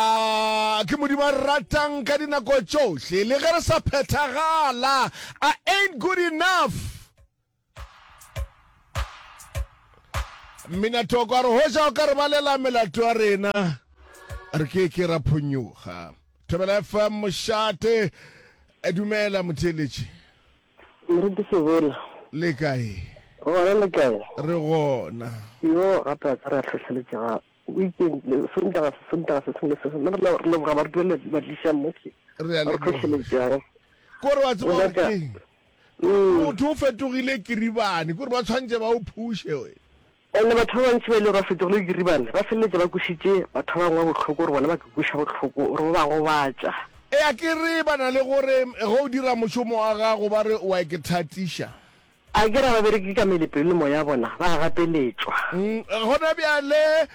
A ke Modimo a re ratang ka dinako tšohle le ge re sa phethagala? I ain't good enough. Mminatoko a re hoja o ka re balela melato ya rena re ke ke ra phonyoga. Thobela FM mošate e dumela motheeletši. Moruti Sebola. Le kae? Gona le kae? Re gona. Yo gape a tsere a tlhotlheletše ga O itše, Sontaga se Sontaga se sengwe le se sengwe, le rena re leboga badueledi ba tliša mo ke Re a ba re leboga. hlohleletšang. Kore wa tseba gore Ngaka, keng? Kore mm, motho o fetogile kiribane, kore ba tshwantše ba o phuše wena. and batho ba bantši ba e le gore ba fetogile kiribane ba feleletša ba kwešitše batho ba bangwe bohloko, gore bona ba ka kweša bohloko, gore ba ba gobatša. Eya, ke re ba na le gore ge o dira mošomo wa gago ba re o a ke thatiša. A ke ra babereki ka mele, pelo le moya ya bona ba a gapeletšwa. Gona bjale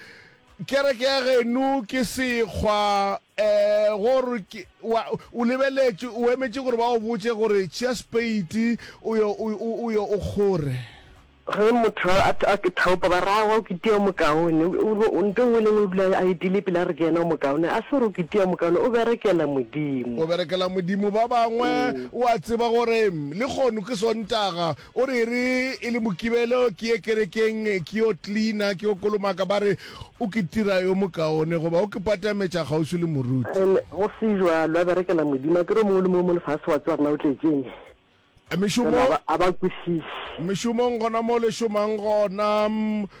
kereke ya genu ke sekgwa, eh, gore ke, wa, o lebeletše, o emetše gore ba go botše gore, Tšea speiti, o yo, o, o, o yo o kgore. Ge motho a, a, a thaopa, ba re, Aowa, o kitia o mokaone. O, o, o, nto nngwe le nngwe o dula a etile pele a re ke yena o mokaone. A se gore o kitia o mokaone, o berekela Modimo. O berekela Modimo. Ba bangwe. O a tseba gore lehono ke Sontaga. O re e re e le Mokibelo ke ye kerekeng ke yo klina, ke yo kolomaka. Ba re o ke tira yo mokaone goba o ke patametša kgauswi le moruti. And go se jalo, a berekela Modimo. Akere o mongwe le mongwe mo lefase o a tseba gore na o tletšeng. Mešomo, Fela ga ba, ga ba kwešiše. mešomong gona mo le šomang gona.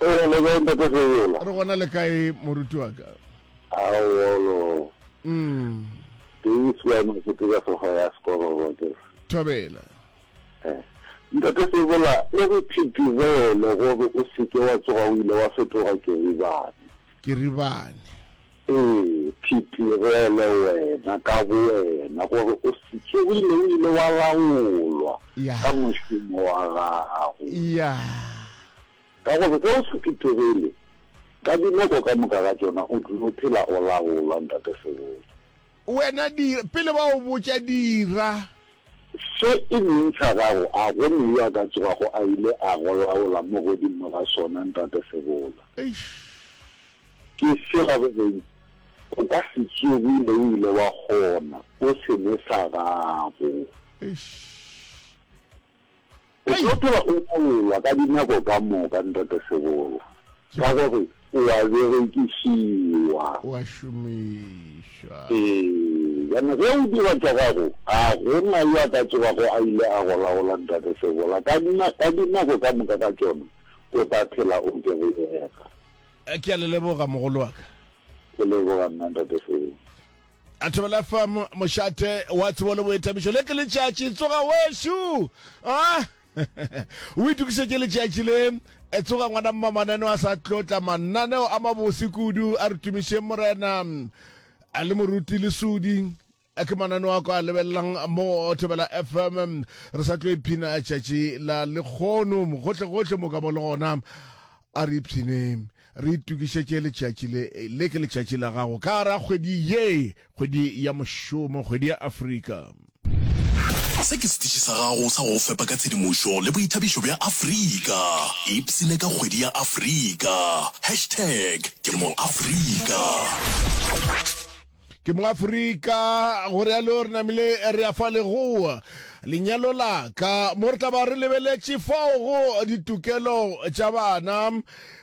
O gona le kae ntate Seyola? Re gona le kae moruti wa ka? Aowa o lo. Mm. Ke e swa makete ka sofa ya sekoro go ke. Thobela. Eh. Ntate Seyola, e re phithizele gore o seke wa tsoga o ile wa fetoga Keribane. Keribane. Ee, Phiphi, go ele wena ka bowena gore o se tsogile o ile wa laolwa ka mošomo wa gago. Ka gore ge o se phethogele, ka dinako ka moka ga tšona o tlilo phela o laolwa, Ntate Sebotse. Wena dira, pele ba go botša, dira. Se e leng sa gago, a go ne yo a ka tsogago a ile a go laola mo godimo ga sona, Ntate Sebola? Eish! Ke sela go reng, o ka se tsoge mo o ile wa kgona, o se ne sa gago. Eish! O tlo tloga o boolwa ka dinako ka moka, Ntate Sebola, ka gore o a berekišiwa. O a šomišwa. Ee, bjana ge o dira tša gago, ga go na yo a ka tsogago a ile a go laola, Ntate Sebola. Ka, ka dinako ka moka ka tšona, o tla phela o kereyega. Ke a le leboga, mogolo wa ka. Ke leboga nna, Ntate Sebola. a thobela fa mo- mošate wa tsebo le boetabišo le ke letšatši tsoga wešu a o itukišetše letšatši le e tsoga ngwana mma mananeo a sa tlotla mananeo a mabose kudu a re tumišeng morena a le moruti le sudi a ke mananeo a ko a lebelelang mo thobela fm re sa tlo iphina tšatši la lekgono gohle gohle mo ka mo le gona a re ipshineng Re itokišetše letšatši le, le ke letšatši la gago ka gare ga kgwedi ye, kgwedi ya mošomo, kgwedi ya Afrika. Se ke setiši sa gago sa go go fepa ka tshedimošo le boithabišo bja Afrika. Ipsine ka kgwedi ya Afrika. Hashtag ke mo Afrika. Ke moAfrika, go realo re namile re ya fa legoa lenyalo la ka mo re tla ba re lebeletše fao go ditokelo tša bana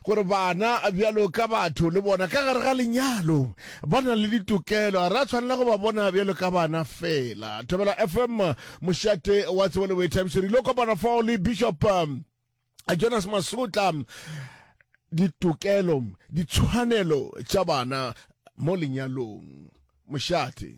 gore bana bjalo ka batho le bona ka gare ga lenyalo ba na le ditokelo ga re a tshwanela go ba bona bjalo ka bana fela. Thobela FM, mošate wa tsebo le boithabišo, re ile kopana fao le Bishop jonas masotla ditokelo ditshwanelo tša bana mo lenyalong mošate